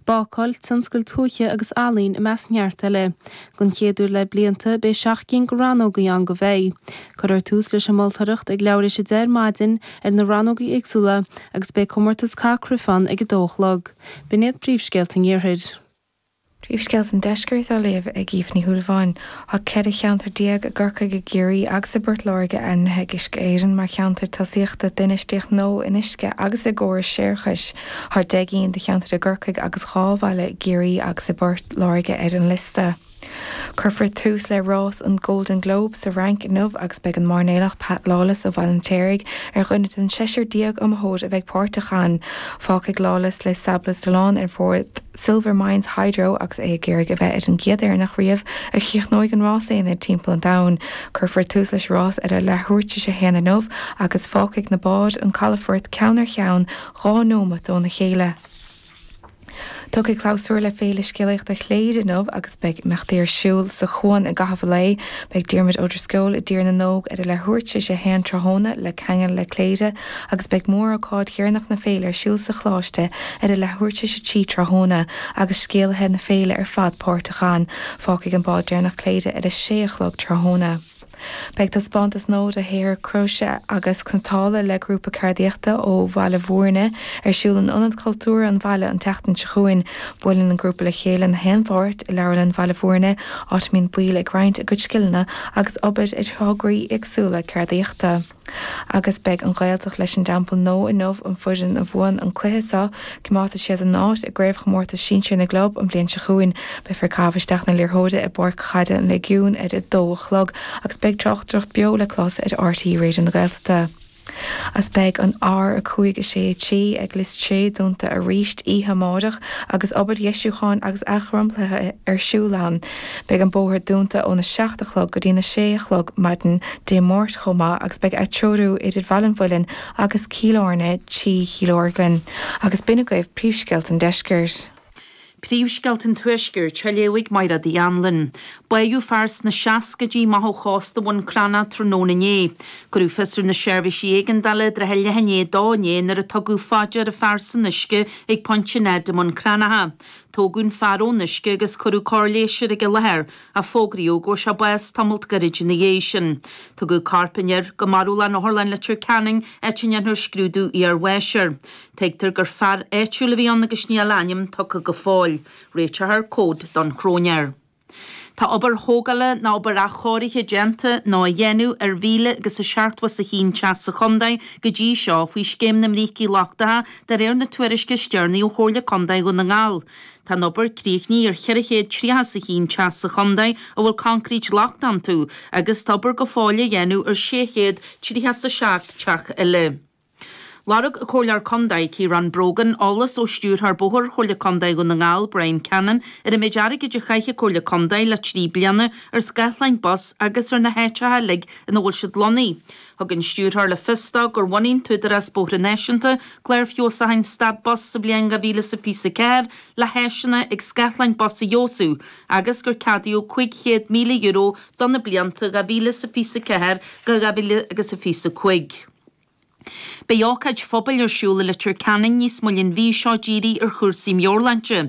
Bácáil, tionscail tuaithe agus ealaín i measc neart eile. Don chéad uair le blianta, beidh seacht gcinn de rannógaí ann do bheithígh. Cuirfear tús leis an moltóireacht ag leathuair tar éis a deich ar maidin ar na rannógaí éagsúla agus beidh comórtas caitheamh cruife ann ag a dó a chlog. B'in iad príomhscéalta an Iarthair. Príomhscéalta an Deiscirt á léamh ag Aoife Ní Shúilleabháin. Tá ceithre cheantar déag i gCorcaigh, i gCiarraí agus i bPort Láirge ainmnithe ag Uisce Éireann mar cheantair tosaíochta d'infheistíocht nua in uisce agus i gcórais séarachais. Tá deich gcinn de cheantair i gCorcaigh agus dhá bhaile i gCiarraí agus i bPort Láirge ar an liosta. Cuirfear tús le rás an Golden Globe sa Fhrainc inniu agus beidh an mairnéalach Pat Lawless ó Bhaile an Fheirtéaraigh ar dhuine den seisear déag iomaitheoir a bheidh páirteach ann. Fágfaidh Lawless Les Sables d'Olonne ar bhord. Silver Mines Hydro agus é ag iarraidh a bheith ar an gcéad Éireannach riamh a chríochnóidh an Rás Aonair timpeall an domhain. Cuirfear tús leis an rás ar a leathuair tar éis a haon inniu agus fágfaidh na báid an calafort ceann ar cheann dhá neomat óna chéile. Tiocfaidh clabhsúr le Féile Scéalaíochta Chléire inniu agus beidh imeachtaí ar siúl sa chuan i gcaitheamh an lae. Beidh Diarmuid Ó Drisceoil i dTír na nÓg ar a leathuair tar éis a haon tráthnóna le ceangal le Cléire, agus beidh mórócáid dheireanach na féile ar siúl sa Choláiste ar a leathuair tar éis a trí tráthnóna agus scéalaithe na féile ar fad páirteach ann. Fágfaidh an bád deireanach Cléire ar a sé a chlog tráthnóna. Beidh taispeántas nua de shaothar cróise agus cniotála le grúpa ceardaíochta ó Bhaile Bhúirne ar siúl in Ionad Cultúrtha an bhaile an tseachtain seo chugainn. Buaileann an grúpa le chéile gach aon Mháirt i Leabharlann Bhaile Bhúirne, áit a mbíonn baill ag roinnt a gcuid scileanna agus obair ar thograí éagsúla ceardaíochta. Agus beidh an Ghaeltacht leis an dTeampall Nó inniu an fhoireann a bhuann an cluiche seo, coimeádfaidh siad a n-áit i gCraobhchomórtas Sinsear na gClub an bhliain seo chugainn. Beifear ag caitheamh isteach na liathróide i bPáirc Chaide an Léigiúin ar a dó a chlog agus beidh tráchtaireacht beo le clos ar RTÉ Raidió na Gaeltachta. Beidh an R5 6 3 ag Lios Sé dúnta arís oíche amárach agus obair dheisiúcháin agus athdhromchlaithe ar siúl ann. Beidh an bóthar dúnta óna seacht a chlog go dtína sé a chlog maidin Dé Máirt chomh maith agus beidh atreorú idir Bhaile an Mhuilinn agus Cill Airne trí Chill Orglan agus b'in agaibh príomhscéalta an deiscirt. Príomhscéalta an tuaiscirt á léamh ag Mairéad Uí Anluain. Bádh fear sna seascaidí amach ó chósta Bhun Cranncha tráthnóna inné. Cuireadh fios ar na seirbhísí éigeandála i dtrátha a leath i ndiaidh a dó inné nuair a tugadh fá dear fear san uisce ag Pointe Ned i mBun Cranncha. Tógadh an fear ón uisce agus cuireadh cóir leighis air ag an láthair ach fógraíodh go bhfuair sé bás tamalt gairid ina dhiaidh sin. Tugadh corp an fhir go marbhlann Otharlann Leitir Ceanainn áit a ndéanfar scrúdú iar-bháis air. Tuigtear gur fear áitiúil a bhí ann agus níl a ainm tugtha go fóill. Réiteofar comhad don chróinéir. Tá obair thógála ná obair athchóirithe déanta, nó á dhéanamh, ar mhíle agus a seachtó is a haon teach sa Chontae go dtí seo faoi Scéim na mBrící Lochtacha de réir na tuairisce is deireanaí ó Chomhairle Contae Dhún na nGall. Tá an obair críochnaithe ar cheithre chéad tríocha is a haon teach sa Chontae a bhfuil coincréit lochtach iontu agus tá obair go fóill á dhéanamh ar sé chéad tríocha is a seacht dteach eile. Lorg an Comhairleoir Contae, Ciarán Brogan, eolas ó Stiúrthóir Bóthair Chomhairle Contae Dhún na nGall, Bryan Cannon, ar an méid airgid a chaith an Chomhairle Contae le trí bliana ar scáthláin bus agus ar na háiteacha uilig ina bhfuil siad lonnaithe. Thug an Stiúrthóir le fios dó gur bhunaigh an tÚdarás Bóithre Náisiúnta clár feabhsúcháin stad bus sa bhliain 2024 le háiseanna ag scáthláin bus a fheabhsú agus gur ceadaíodh €500,000 do na blianta 2024 go 2025. Beidh ócáid phobail ar siúl i Leitir Ceanainn níos moille an mhí seo dírithe ar chúrsaí meabhairshláinte.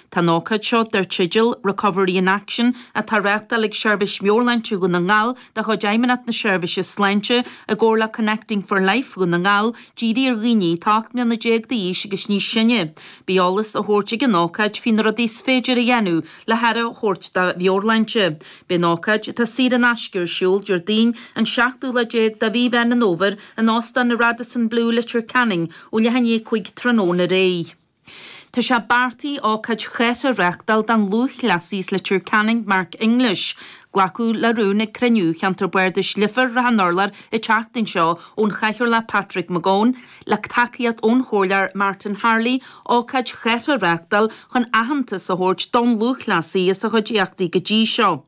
Tá an ócáid seo, dar teideal 'Recovery in Action' atá a reáchtáil ag Seirbhís Mheabhairshláinte Dhún na nGall de chuid Fheidhmeannacht na Seirbhíse Sláinte i gcomhar le Connecting for Life Dhún na nGall, dírithe ar dhaoine atá 18 mbliana d'aois agus níos sine. Beidh eolas á thabhairt ag an ócáid faoi na rudaí is féidir a dhéanamh le haire a thabhairt dá meabhairshláinte. Beidh an ócáid atá saor in aisce ar siúl Déardaoin an seachtú lá déag de mhí Mheán an Fhómhair in Óstán an Radisson Blu Leitir Ceanainn ó leath i ndiaidh a cúig tráthnóna ar aghaidh. Tá sé beartaithe ócáid chathartha a reáchtáil don lúthchleasaí as Leitir Ceanainn Mark English. Glacadh le rún ag cruinniú Cheantar Bardais Leifear Shrath an Urláir an tseachtain seo ón Chathaoirleach Patrick McGowan, le tacaíocht ón Chomhairleoir Martin Harley, ócáid chathartha a reáchtáil chun aitheantas a thabhairt don lúthchleasaí as a chuid éachtaí go dtí seo.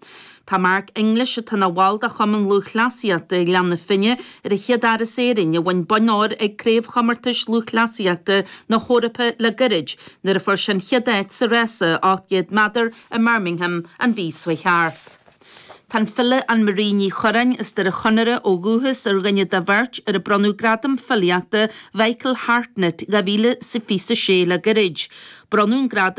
Tá Mark English, atá ina bhall de Chumann Lúthchleasaíochta Ghleann na Finne, ar an chéad fhear as Éirinn a bhain bonn óir ag Craobhchomórtais Lúthchleasaíochta na hEorpa le gairid nuair a fuair sé an chéad áit sa rása 800 méadar i mBirmingham an mhí seo thart. Tá an file Annemarie Ní Churreáin as Doire Chonaire ó dhúchas ar dhuine de bheirt ar a bronnadh Gradam Filíochta Mhichael Hartnett 2026 le gairid. Bronnadh an gradam